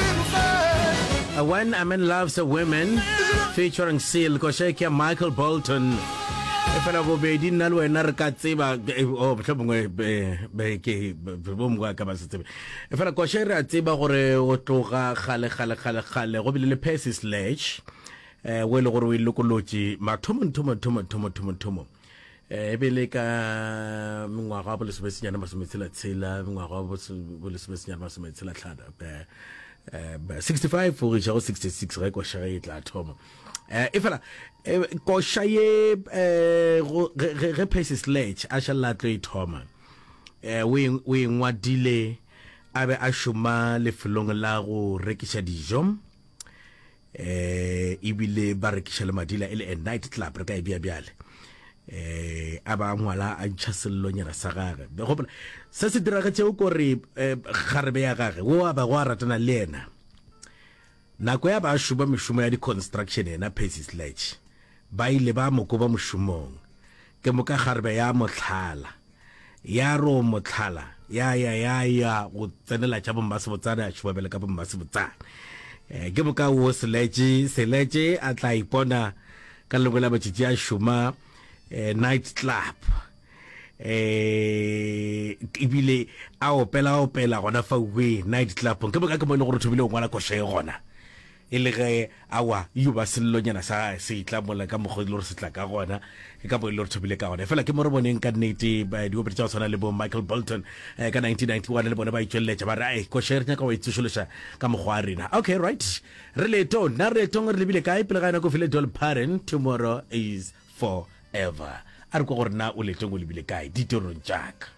Uh, When a Man Loves a Woman featuring Seal koša ke ya Michael Bolton e fela bobedi nna le wena re ka tseba eh, oh, mohlho mongwe be- be- ke- be- be- bo mongwe a ka ba se tsebe e fela koša re a tseba gore o tloga kgale kgale kgale kgale go bile le Percy Sledge eh, o e le gore o e lokolotše mathomo nthomo nthomo nthomo nthomo nthomo e be le ka mengwaga wa bolesomesenyane masometshela-tshela mengwaga wa bolesomesenyane masometshela-tlhana eh, eh, 65 go iša go 66 ge koša e tla thoma eh, e fela koša ye ge pace sledge a šalela tlo e thoma o e, e ngwadile a be a šoma lefelong la go rekiša dijo eh ebile ba rekiša le madila e le a night club re ka e bea bjale eh a ba ngwala a ntšha sellonyana sa gage gopola se se diragetšego kore eh, kgarebe ya gage wo a ba go a ratana le yena nako ya ba a šoma mešomo ya di-construction yena pasis latch ba ile ba mo koba mošomong Ke moka kgarebe ya mohlala. Ya ro mohlala ya ya ya ya go tsenela tša bommasebotsane a tšhubabele ka bommasebotsane. Eh, ke moka wo seletše seletše a tla ipona ka lengwe la matšatši a šoma eh, night club eh ebile a opela opela gona fa we night club ke moka ke mo e le gore thobile o ngwala koša e gona E le ge a wa, yo ba sellonyana sa gage se tla mola ka mokgwa e le gore se tla ka gona, ke ka mo e le gore thobile ka gona. Efela ke mo re boneng ka nnete diopedi tša go tshwana le bo Michael Bolton ka 1991 le bona ba itšweleletša ba re, Ai, koša e re nyaka go e tsošološa ka mokgwa wa rena. Okay, right. Re leetong. Na re leetong re lebile kae? Pele ga yona ko file Dolly Parton, Tomorrow Is Forever. A re kwa gore na o leetong o lebile kae, ditirong tša ka.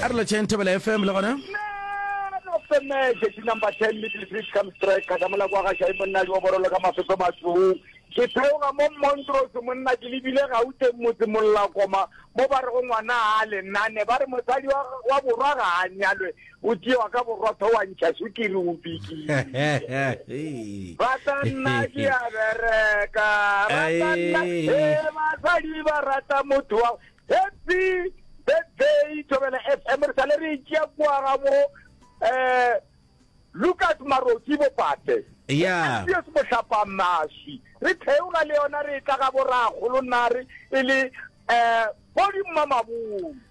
a re letšheng thebela fm le gona femeje di number ten middle bridge come strike ka damola kwa gaša e monna yo borolo ka mafefe matsong ke theoga mo montrose monna ke lebile gauteng motse mollakoma mo ba re go ngwana a lenane ba re mosadi wa borwa ga a nyalwe o tšewa ka borotho wa ntšha sukiri o bikile rata nna ke a bereka rata nna e basadi ba rata motho wa happy birthday thobela f m re sale re tšea kuaga mo um eh, lucas maroki bopate ya se mohlapa maswi re theoga le yona re tla ga boragolo nare e le um eh, bodimma mabong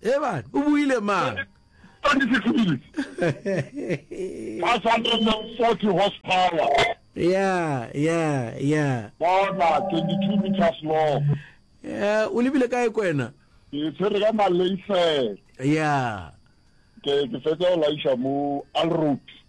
Eban, o buile mang? Yeah, yeah, yeah. Bona, 22 meters long. Eh, o lebile kae kwena? Ke tshwere ka Malaysia. Yeah. Ke ke fetsa o laisha mo Alroad.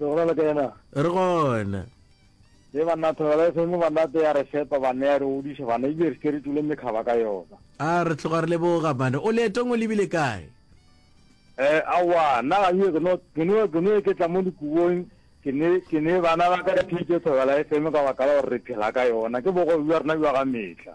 Re gona le ka yena? Re gona. Ye banna Thobela e feme banna te ya re fepa banna ya re godiša banna ebile re seke re tule mekgaba ka yona. A re tloga re leboga banna. O leetong o lebile kae? Eh aowa nna ga yo ke no ke no ke no ke tla mo dikubong ke ne ke ne bana ba ka re theetše Thobela e feme ka baka la gore re phela ka yona ke bogobe bja rena bja ga metlha.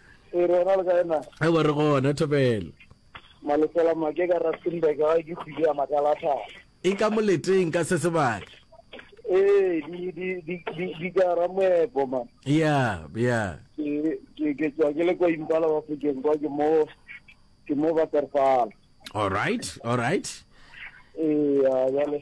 e re gona le ka ena e bo re gona thobelo malefela make ka rustenburg ga ke kgwedi ya makalatlhaka e ka moleteng ka se sebaka ee di di di di di ka ra moepo ma ya ya ke ke ke tswa ke le kwa impala wa fokeng kwa ke mo ke mo ba terfala all right all right ee ya jale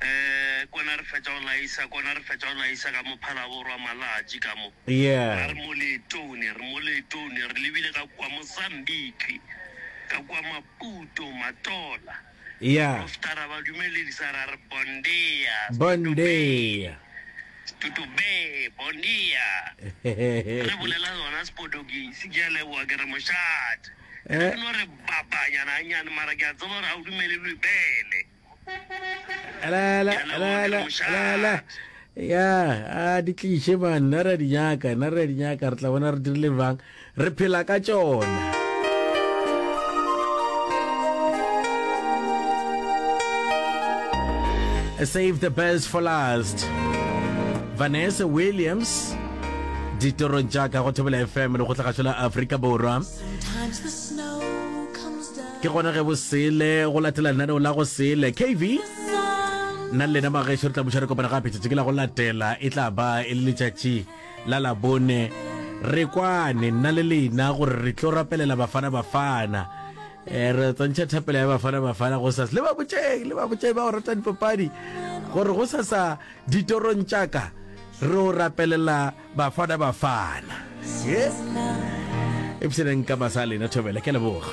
Ee, kona re fetša go laisa, kona re fetša go laisa ka mo Phalaboro wa malatši ka mo. Yeah. Ra re mo leetong, ne re mo leetong, ne re lebile ka kua Mozambique, ka kua Maputo, Matola. Yeah. Profeta ra ba dumeledisa, ra re Bon dia, Bon dia. Stuto Bay, Bon dia. Re bolela sona Sepodogisi, ke a leboga, ke re mošate. Ke Eh. no re bapanyana gannyane, mara ke a tseba gore ga o dumele Bibele. elele elele elele ya a di tliše man na re a di nyaka na re a di nyaka re tla bona re dirile bang re phela ka tšona save the best for last vanessa williams ditorong tša ka go thobela fm le go tlhagašo la aforika borwa Ke gona ge bo sele go latela lenaneo la go sele. KV, nna le lena mageso re tla buša re kopana gape tšatši ke la go latela e tla ba e le letšatši la labone re kwane nna le lena gore re tlo rapelela bafana bafana um re tsantšha thapelo ya bafana bafana go sasa le ba botšeng le ba botšeng ba go rata dipapadi gore go sasa ditorong tšaka re o rapelela bafana bafana e pšeneng ka masa a lena thobela ke leboga